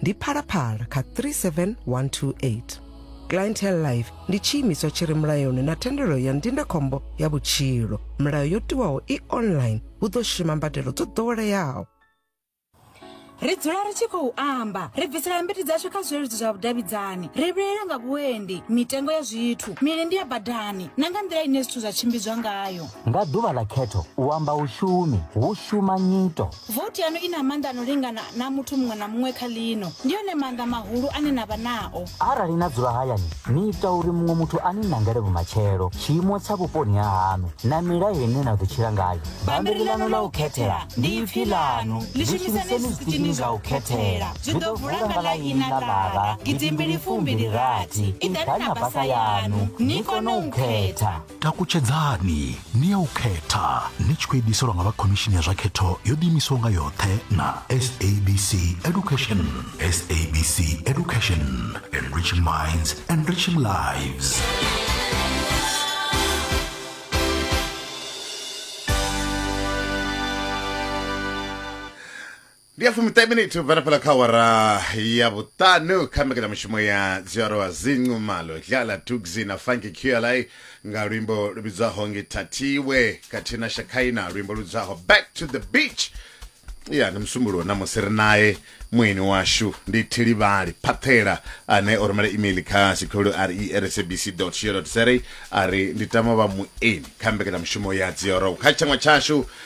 ndi phalaphala kha 37128 clientele life ndi tshiimiswa tshi re mulayoni na thendelo ya ndindakhombo ya vhutshilo milayo yo tiwaho i online hu ḓo shuma mbadelo dzo ḓoweleaho ri dzula ri tshi khou amba ri bvisela mbiti dzashu kha zwileludzi zwa vhudavhidzani ri vhilela nga vhuendi mitengo ya zwithu milindi ya badani na nga nḓila ine zwithu zwa tshimbidzwa ngayo nga ḓuvha ḽa khetho u amba u shumi hu shuma nyito Vothi yaṋu i na maanḓa a no lingana na a muthu muṅwe na muṅwe kha ḽino. Ndi one maanḓa mahulu ane na vha nao. Arali na dzula hayani, ni ita uri muṅwe muthu a ni nangele vhumatshelo, tshiimo tsha vhuponi ha haṋu na milayo ine na ḓo tshila ngayo. Bammbiri ḽaṋu ḽa u khethela ndi ipfi ḽaṋu. Ḽi shumiseni zwiṱitshini zwa u khethela. Zwi ḓo vula nga ḽa ina ḽara gidimbili fumbili rathi. Iḓani na basa yaṋu ni kone u khetha. takutshedzani ni ya u khetha ni tshi khou ediselwa nga vha khomishini ya zwa khetho yo ḓiimisaho nga yoṱhe na sabc education sabc education enriching minds enriching lives ndi ya fumiṱahe miniti ubva na fhala kha awara ya vhuṱanu kha mbekanyamushumo ya dziarowa zincu malo dlala tugzi na funky qla nga luimbo lu vhidzwaho ngithathiwe khathihi na shakhaina luimbo lu vhidzwaho back to the beach ya ndi musumbulo namusi ri naye mueni washu ndi thilivhali phaṱhela ane o rumela email kha sikhulu resabc co za a ri ndi tama vha mueni kha mbekanyamushumo ya dziorow kha tshanwa tshashu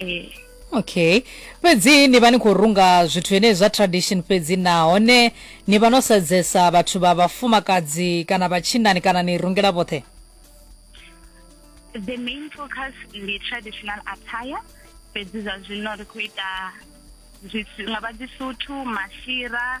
ee okay fhedzi ni vha ni khou runga zwithu henei zwa tradition fhedzi nahone ni vha no sedzesa vhathu vha vhafumakadzi kana vhatshinani kana ni rungela vhoṱhe the main focus ndi traditional attire fhedzi zwa zwino ri khou ita nga vha dzisuthu mashira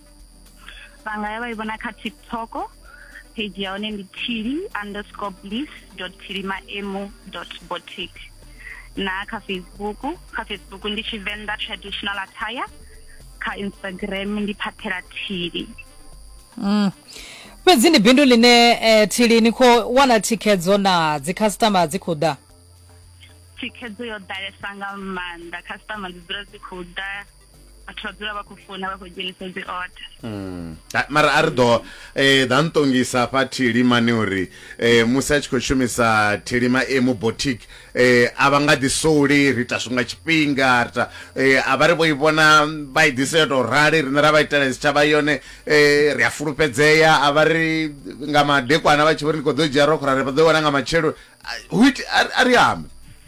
vha nga ya vha i vhona kha tiktok page ya hone ndi tili underscore bliss dot tilimaemu dot botic na kha facebook kha facebook ndi tshivenḓa traditional attire kha instagram ndi phathela tili mm. fhedzi ndi bindu line eh, tili ni khou wana thikhedzo na dzikhasitama dzi khou ḓa thikhedzo yo ḓalesa nga maanḓa khasitama dzi dzula dzi khou ḓa vhathu vha dzula vha khou funa vha khou dzhenisa dzi order mm. mara a ri ḓo um eh, ḓa ntongisa hafha thilima ni uri um musi a tshi khou shumisa thilima e mu botic um eh, a vha nga ḓi souli ri ita zwi nga tshifhinga ri ta um a vha ri vho i vhona vha i ḓise yo tou rali riṋe ra vha itela tshitshavha yone um ri a fulufhedzea a vha ri nga madekwana vha tshi vho ri ndi khou ḓo dzhia rokho ra ri vha ḓo wana nga matshelo a ri ambe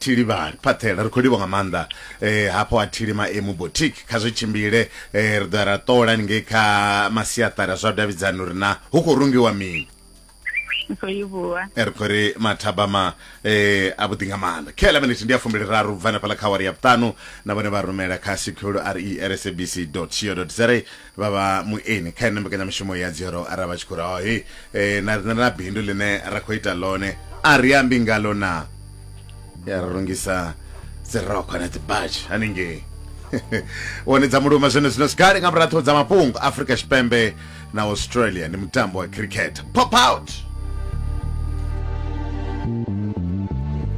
thili vhali phaṱhela ri khou livha nga maanḓa eh hafho a thili maemu boutique kha zwi tshimbile eh ri ḓo ra ṱola ni ngei kha masiaṱari zwa davhidzana uri na hu khou rungiwa mini eh, ri khou ri mathabama eh a vhuḓi nga maanḓa khela minute ndi ya fumbili raru bva nafhala kha wari ya vhuṱanu na vhone vha rumela kha secure re rsabc co za vha vha mueni kha ene mbekanyamushumo ya dzero arali vha tshi khou ri oh, he eh, na rina na bindu ḽine ra khou ita ḽone a ri ambi ngalo na ya ri rungisa dzirokho na dzibatshi haningei one dza muluma zwene zwino sikale nga muratho dza mafhungo afrika tshipembe na australia ndi mutambo wa cricket pop out